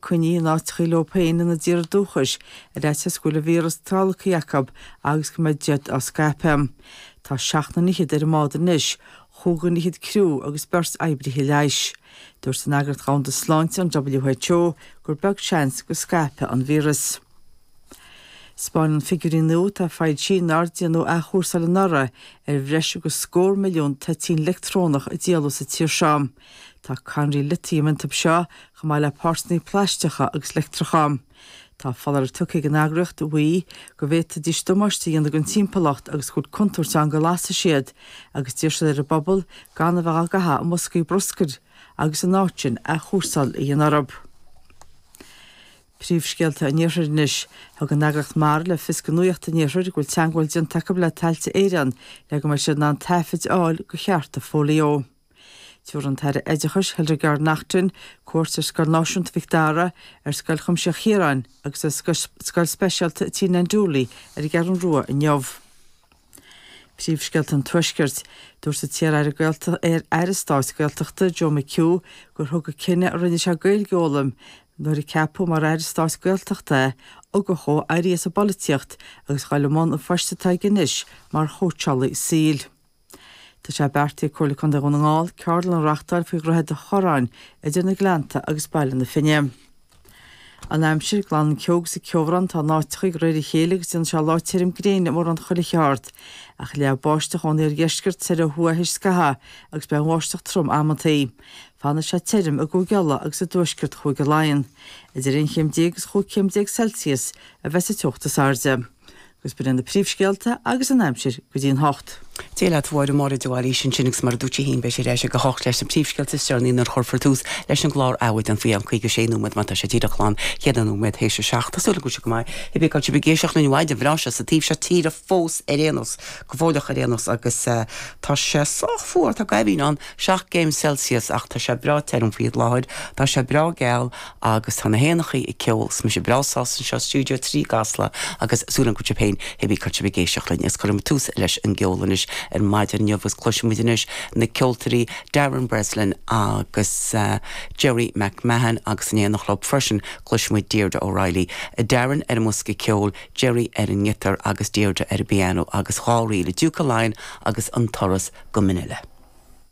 coinnithe in áiteacha leo féin ina dtír dúchais, ar fhaitíos go bhfuil an víoras tolgtha acu agus go mbeadh siad á scaipeadh. Tá seacht nduine fichead ar an mbád anois. Chúig dhuine fichead criú agus beirt oibrithe leighis. Dúirt an Eagraíocht Dhomhanda Sláinte, an WHO, gur beag seans go scaipfidh an víoras. 'Spáineann figiúirí nua atá foilsithe nár déanadh athchúrsáil anuraidh ar bhreis agus scór milliún toitín leictreonach a díoladh sa tír seo. Tá cadhnraí litiam iontu seo, chomh maith le páirteanna plaisteacha agus leictreacha. Tá foláireamh tugtha ag an eagraíocht, WEEE, go bhféadfaidís damáiste a dhéanamh don timpeallacht agus go bhfuil contúirt ann go lasfaidh siad, agus d'iarr siad ar an bpobal gan a bheith á gcaitheamh i mboscaí bruscair agus ina áit sin athchúrsáil a dhéanamh orthu. Príomhscéalta an Iarthair anois. Thug an eagraíocht Mara le fios do Nuacht an Iarthair go bhfuil teagmháil déanta acu le Tailte Éireann le go mbeidh siad in ann taifead a fháil de chearta fóilió. Chuir an tAire Oideachais Hildegarde Naughton cuairt ar Scoil Náisiúnta Mhic Dara, ar Scoil Chuimsitheach Chiaráin agus ar Scoil Speisialta Tigh Nan Dooley ar an gCeathrú Rua inniu. Príomhscéalta an Tuaiscirt. Dúirt an t-iar-aire stáit Gaeltachta Joe McHugh gur thug an cinneadh a rinne sé Gaeilge a fhoghlaim nuair a ceapadh mar aire stáit Gaeltachta é ugach dhó éirí as an bpolaitíocht agus dul i mbun an phoist atá aige anois mar chóitseálaí saoil. Tá sé beartaithe ag Comhairle Contae Dhún na nGall ceardlann a reáchtáil faoi dhroichead an Chorráin idir na Gleannta agus Baile na Finne. An Aimsir, Glanfaidh an ceo agus an ceobhrán atá in áiteacha de réir a chéile agus déanfaidh sé lá tirim gréine i mórán chuile cheard, ach leathfaidh báisteach ón iardheisceart soir ó thuaidh théis scaithimh agus beidh an bháisteach trom amantaí. Fanfaidh sé tirim i gCúige Uladh agus i dtuaisceart Chúige Laighean. Idir aon chéim déag agus chúig chéim déag Celsius a bheas an teocht is airde. agus ba iad sin na príomhscéalta agus an aimsir go dtí a hocht. Dia leat a Mháire, Máire de Bhailís ansin agus mar a dúirt sí féin beidh sí ar ais ag a hocht leis na príomhscéalta is deireanaí nuair a chuirfear tús leis an gclár Adhmhaidin faoi cheann 56 nóiméad mar tá sé díreach glan ceithre nóiméad théis a seacht. Tá súil agam go bhfuil sibh go maith. Cibé cén áit a bhfuil sibh ag éisteacht linn maidin bhreá anseo sa taobh seo tíre fós ar aon nós. Go fóilleach ar aon nós agus tá sé sách fuar tá goimh ann seacht gcéim Celsius ach tá sé breá tirim faoi láthair. Tá sé breá geal. agus tá na héanachaí ag ceol 's mise breá sásta anseo, Stiúideo 3 i gCasla agus súil agam go bhfuil sibh féin cibé cén áit a bhfuil sibh ag éisteacht linn agus cuirfimid tús leis an gceol anois ar maidin inniu agus cloisfimid anois na ceoltóirí Darren Breslin agus Gerry McMahon agus in éineacht leo freisin cloisfimid Deirdre O'Reilly, Darren ar an mbosca ceoil, Gerry ar an ngiotar agus Deirdre ar an bpiano agus dhá ríl, Diúca Laighean agus An Turas go Mainile.